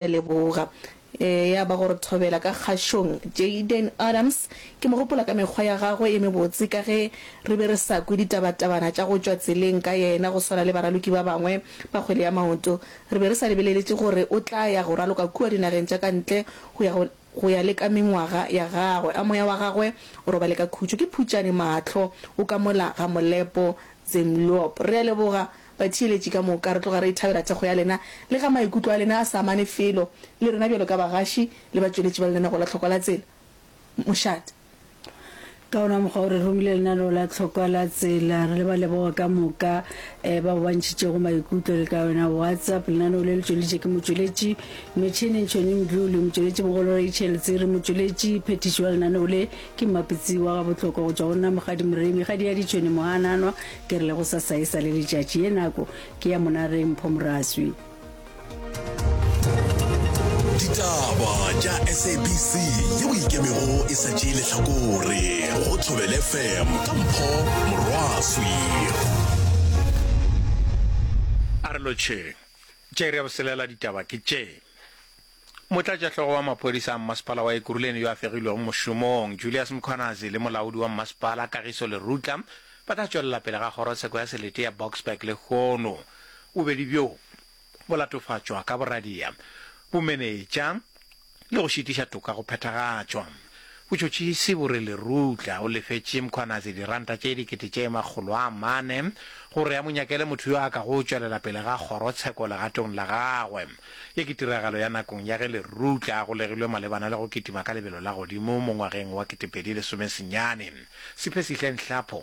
a leboga. Ya ba gore thobela ka kgašong. Jayden Adams, ke mo gopola ka mekgwa ya gagwe e mebotse ka ge re be re sa kwe ditaba-tabana tša go tšwa tseleng ka yena go swana le baraloki ba bangwe ba kgwele ya maoto. Re be re sa lebeleletše gore o tla ya go raloka kua dinageng tša ka ntle go ya go Go ya le ka mengwaga ya gagwe, a moya wa gagwe o robale ka khutšo, ke phutšane mahlo, o ka mola ga molepo. Zemlyob. Re a leboga, batheeletši ka moka. Re tloga re ithabela thekgo ya lena. Le ga maikutlo a lena a sa amane felo le rena bjalo ka bagaši le batšweletši ba lenaneo la Tlhoko la Tsela, mošate, Ka wona mokgwa o re romile lenaneo la tlhokwa la tsela re le ba leboga ka moka eh, bao ba ntšhitšego maikutlo le ka yona whatsapp lenaneo le le tšweleditše ke motšweletši metšhineng tšhoni mdlu le motšweletši mogolo rachel tsere motšweletši phethiši wa lenaneo le ke mmapitsi wa ga botlhokwa go tšwa go nna mogadi moremi gadi ya ditšhoni mogananwa ke re le go sasaesa le letšatši ye nako ke ya monareng pho moraswi ditaba tša sabc yeo e ikemego e sa tšee lehlakore go thobele fm ka mpho morwaswi a re lotšheng tše re ya boselela ditaba ke tše Motlatšahlogo wa maphodisa a mmasepala wa Ekurhuleni yo a fegilwego mošomong, Julius Mkhwanazi le molaodi wa mmasepala, Kagiso Lerutla, ba ka tšwelela pele ga kgorotsheko ya selete ya Boksburg lehono bobedi bjo bo latofatšwa ka boradia, bomenetša le go šitiša toka go phethagatšwa. Botšhotšhisi bo re Lerutla o lefetše Mkhwanazi diranta tše dikete tše makgolo a mane gore a mo nyakele motho yo a ka go tšwelela pele ga kgorotsheko legatong la gagwe. Ye ke tiragalo ya nakong ya ge Lerutla a golegilwe malebana le go kitima ka lebelo la godimo mo ngwageng wa ketepedi lesomesenyane. Siphesihle Nhlapho.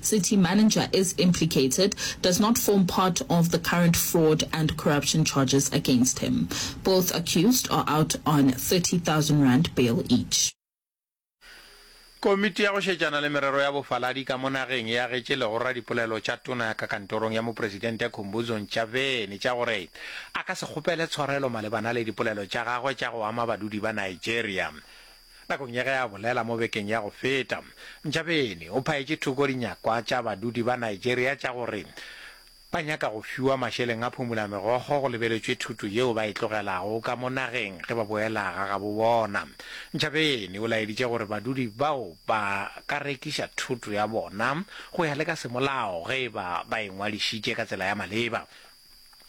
City manager is implicated does not form part of the current fraud and corruption charges against him. Both accused are out on R30,000 bail each. Komiti ya go šetšana le merero ya bofaladi ka mo nageng e agetše legora dipolelo tša tona ka kantorong ya mopresidente Khumbudzo Ntshavheni tša gore a ka se kgopele tshwarelo malebana le dipolelo tša gagwe tša go ama badudi ba Nigeria Nakong ya ge a bolela mo bekeng ya go feta, Ntshabeni o phaetše thoko dinyakwa tša badudi ba Nigeria tša gore ba nyaka go fiwa mašeleng a phumolamegogo go lebeletšwe thuto yeo ba e tlogelago ka mo nageng ge ba boela ga gabo bona. Ntshabeni o laeditše gore badudi bao ba ka rekiša thuto ya bona go ya le ka semolao ge e ba ba e ngwadišitše ka tsela ya maleba.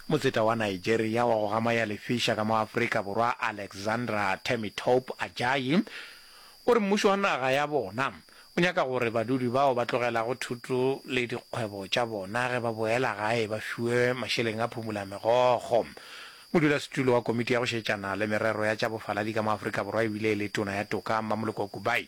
Motseta wa Nigeria wa go gamaya lefiša ka mo Afrika Borwa Alexandra Temitope Ajayi o re mmušo wa naga ya bona o nyaka gore badudi bao ba tlogelago thuto le dikgwebo tša bona ge ba boela gae ba fiwe mašeleng a phumula megogo. Modulasetulo wa komiti ya go šetšana le merero ya tša bofaladi ka mo Afrika Borwa e bile e le tona ya toka Mmamoloko Kubayi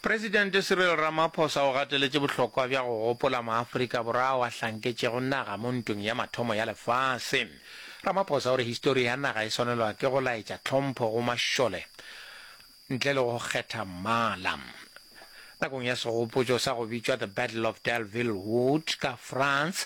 Presidente Cyril Ramaphosa o gateletše bohlokwa bja go gopola maAfrika Borwa ao a hlanketšego naga mo Ntweng ya Mathomo ya Lefase. Ramaphosa o re histori ya naga e swanelwa ke go laetša tlhompho go mašole ntle le go kgetha mmala. Nakong ya segopotšo sa go bitšwa The Battle of Delville Wood ka France,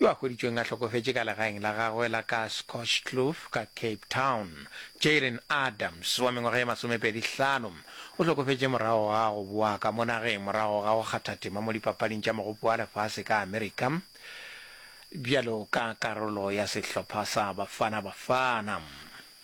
yo a hweditšweng a hlokofetše ka legaeng la gagwe la ka Scotchkloof ka Cape Town. Jaylen Adams, wa mengwaga ye masomepedi hlano, o hlokofetše morago ga go boa ka mo nageng morago ga go kgatha tema mo Dipapading tša Mogopo wa Lefase ka Amerika bjalo ka karolo ya sehlopha sa Bafana Bafana.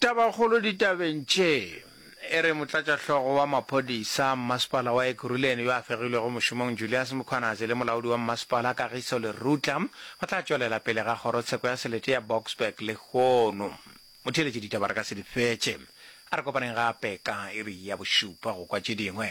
Tabakgolo ditabeng tše e re motlatšahlogo wa maphodisa mmasepala wa Ekurhuleni yo a fegilwego mošomong Julias Mkhwanazi le molaodi wa mmasepala Kagiso Lerutla ba tla tšwelela pele ga kgorotsheko ya selete ya Boksburg lehono. Motheeletši ditaba re ka se di fetše. A re kopaneng gape ka iri ya bošupa go kwa tše dingwe.